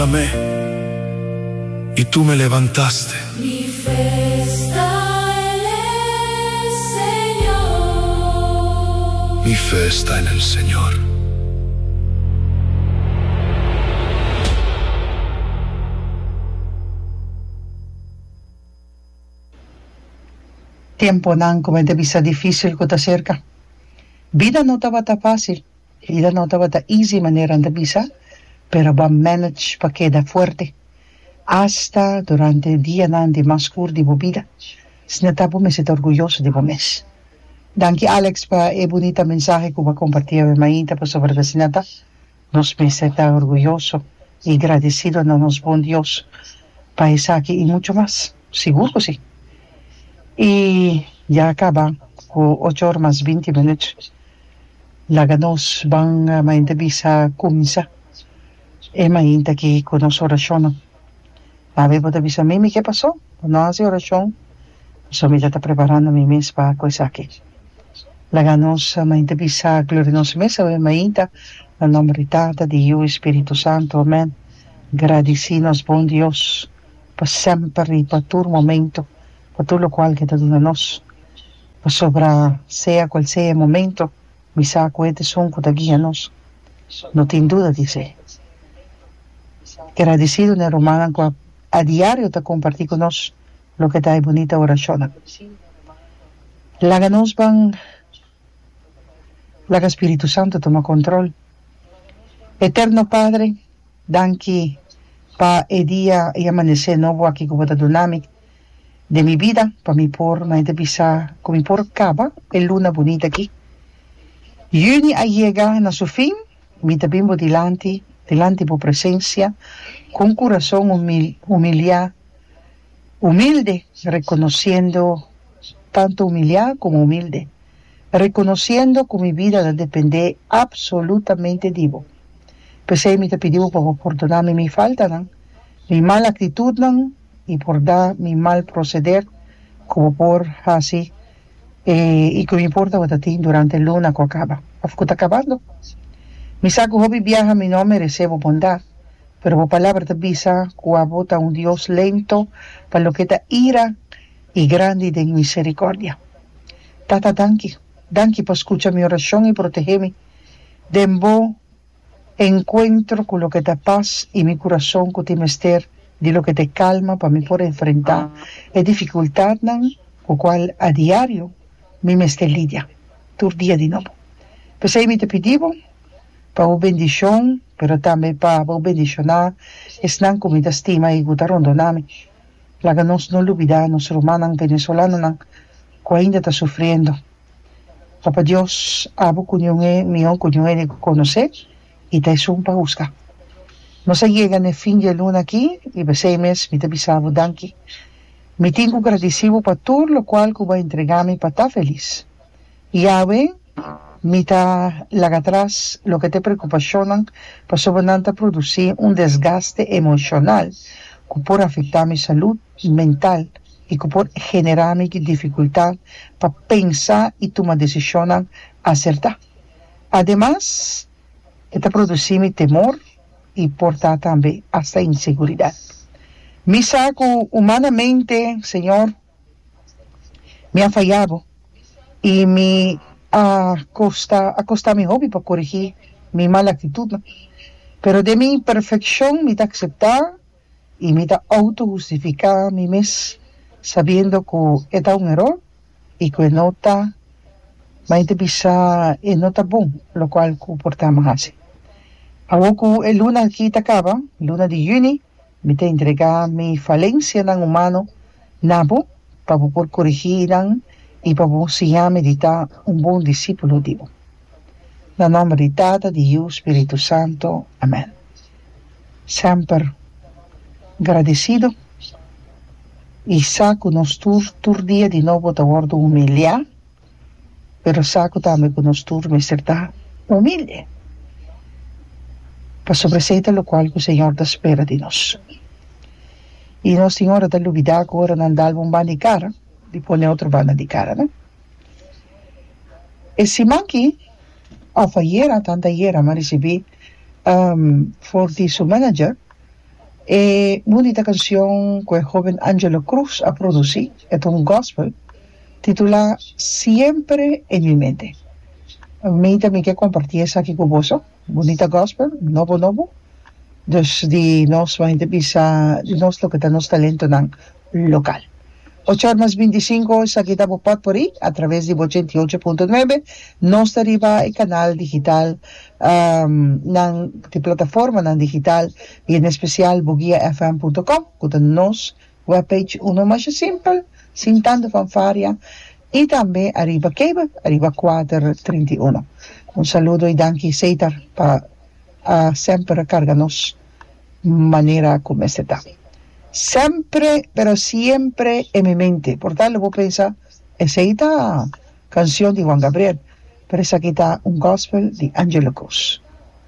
pa me, i tu me levantaste. Mi fe sta en e Señor. Mi fe sta en el Señor. Tiemponan ku mi ta bisa difísil ku ta serka. Bida no tabata fásil. Hida no tabata easy manera n'ta bisa pero bo a manage pa keda fuerte hasta durante dianan di mas skur di bo bida sina ta bo mester ta orguyoso di bo mes. Danki Alex pa e bunita mensahe ku bo a komparti awe mainta pasobra ta asina ta, nos mester ta orguyoso i gradesido na nos Bon Dios pa esaki i muchu mas. Sigur ku si. I ya a kaba ku ocho or mas binti minut. Laga nos ban mainta bisa ku misa. E mainta ki ku nos orashonnan. Abi bo ta bisa mi mi ke pasó pa no hasi orashon pasobra mi ta ta preparando mi mes pa ku esaki. Laga nos mainta bisa gloria nos mes awe mainta na nomber di Tata, di Yu i Spiritu Santu. Amèn. Gradisí nos bon Dios. pa semper i pa tur momento, pa tur lokual ku e ta duna nos. Pasobra sea kual sea e momento, mi sa ku e ta esun ku ta guia nos. No tin duda di esei. Gradisido na e rumannan ku a diario ta kompartí ku nos loke ta e bunita orashonnan. Laga nos ban Laga Spiritu Santu tuma control. Eterno Padre, danki pa e dia, e amanece nobo aki cu bo ta duna mi den mi bida pa mi por, mei ta bisa cu mi por caba e luna bunita aki. Juni a yega na su fin, mi ta bin bo dilanti, dilanti bo presencia, cu un curason humil, humilia. Humilde, reconociendo, tanto humilia como humilde, reconociendo cu mi bida ta depende absolutamente di Bo. P'esey mi ta pidi Bo pa Bo pordona mi mi faltanan, mi mal actitudnan y por da mi mal proceder cu Bo por haci y cu no importa Bo ta tin durante e luna cu a caba of cu ta cabando. Mi sa cu hopi biaha mi no a merece Bo bondad, Pero bo palabra ta bisa ku abo ta un Dios lento pa loke ta ira i grandi den miserikordia. Tata, danki. Danki pa skucha mi orashon i protehé mi. Den bo enkuentro ku loke ta pas i mi kurason ku tin mester di loke ta e kalma pa mi por enfrentá e difikultatnan ku kual a diario mi mester lidia tur dia di nobo. P'esei mi ta pidi bo. pa bo bendishon, pero tambe pa bo bendishoná esnan ku mi ta stima i ku ta rondoná mi. Laga nos no lubidá nos rumannan venesolanonan ku ainda ta sufriendo. Papa Dios, abo ku niun e mihó ku niun e di konosé i ta esun pa husga. Nos a yega na e fin di e luna akí i p'esei mes mi ta bisa bo danki. Mi tin ku gradisí bo pa tur lokual ku bo a entregá mi pa ta felis. Yahwe, Mi ta laga tras loke ta e preokupashonnan pasobra nan ta produsí un desgaste emoshonal ku por afektá mi salud mental i ku por generá mi di difikultá pa pensa i tuma desishonnan asertá. Ademas, e ta produsí mi temor i por ta tambe asta inseguridat. Mi sa ku humanamente, Señor, Mi a fayá bo i mi a kosta, a kosta mi hopi pa koregí mi mal aktitutnan. Pero den mi imperfekshon mi ta akseptá i mi ta outohustifiká mi mes, sabiendo ku e ta un eror i ku e no ta, mainte bisa e no ta bon, lokual ku por ta mi hasi. Awor ku e luna aki ta kaba, luna di yüni, Mi ta entregá mi falensianan humano na bo pa bo por korigí nan i pa bo siña mi di ta un bon disípulo di bo. Na nòmber di Tata, di Yu, Spiritu Santu. Amèn. Semper gradisido i sa ku nos tur tur dia di nobo ta wòrdu humiliá. pero sa ku tambe ku nos tur mester ta humilde pasobra esei ta lokual ku Señor ta spera di nos. I nos tin ora ta lubidá ku ora nan dalba un banda di kara di pone otro banda di kara, no? E siman aki òf ayera, antayera, mi a risibí for di su manager, E bunita cancion cu e hoben Angelo Cruz a produci, e ta un gospel, titula Siempre en mi mente. Mi ta mi ke comparti esaki cu boso, bunita gospel, nobo nobo, dus di nos, bo hende bisa di nos loke ta nos talentonan, local. Ocho or mas binti sinku esaki ta bo pot pori a traves di bo ochenta i ocho punto nuebe. Nos ta riba e kanal digital nan di plataformanan digital i en espesial bugiafm punto com ku ta nos web page uno masha simpel sin tantu fanfaria i tambe ariba cable ariba kuater trinta i uno. Un saludo i danki Cesar pa semper a karga nos. manera cu mester ta. Sempre, pero siempre en mi mente. Por tal bo pensa, Esey ta cancion di Juan Gabriel, pero esaki ta un gospel di Angelo Cruz.